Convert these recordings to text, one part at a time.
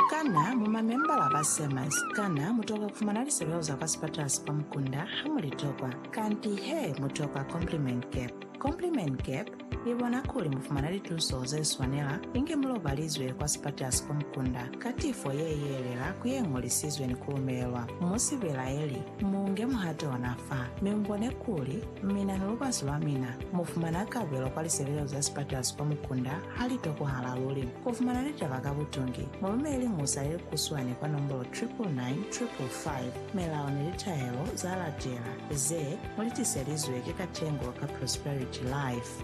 Kana mu mamembala ba Sermons? Kana mu tokwa ku fumana lisebeo za kwa sipatala si kwa mukunda ha mu li tokwa? Kanti he, mu tokwa Compliment Gap. Compliment Gap i bona kuli mu fumana lituso ze swanela inge mu lobalizwe kwa sipatala si kwa mukunda ka tifo ye yelela ku ye ñolisizwe ni ku lumelelwa. Mu si belaeli, mu nge muhato ona fa, mi mu bone kuli mina ni lubasi lwa mina mu fumana kabelo kwa lisebeo za sipatala si kwa mukunda. Ha li tokohala luli ku fumana litaba ka butungi, mu lumele musa ye kuswani kwa nombolo 999555. Milao ni litahelo za latela ze mu li tiselizwe ki Katengo ka Prosperity Life.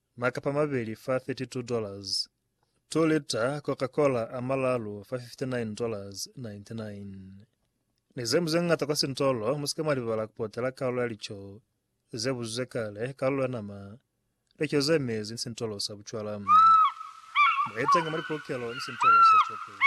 Makapa mabeli fa 32 dollars. 2 lita Coca Cola a malalu fa 59 dollars 99. Ni zeñwi zeñata kwa sintolo musika mwalibala kupotela kalulo ya lico ze buzizwe kale, kalulo ya nama, lico ze mezi ni sintolo sa bucwala. Mwaitenge mwa lipolokelo ni sintolo sa chope.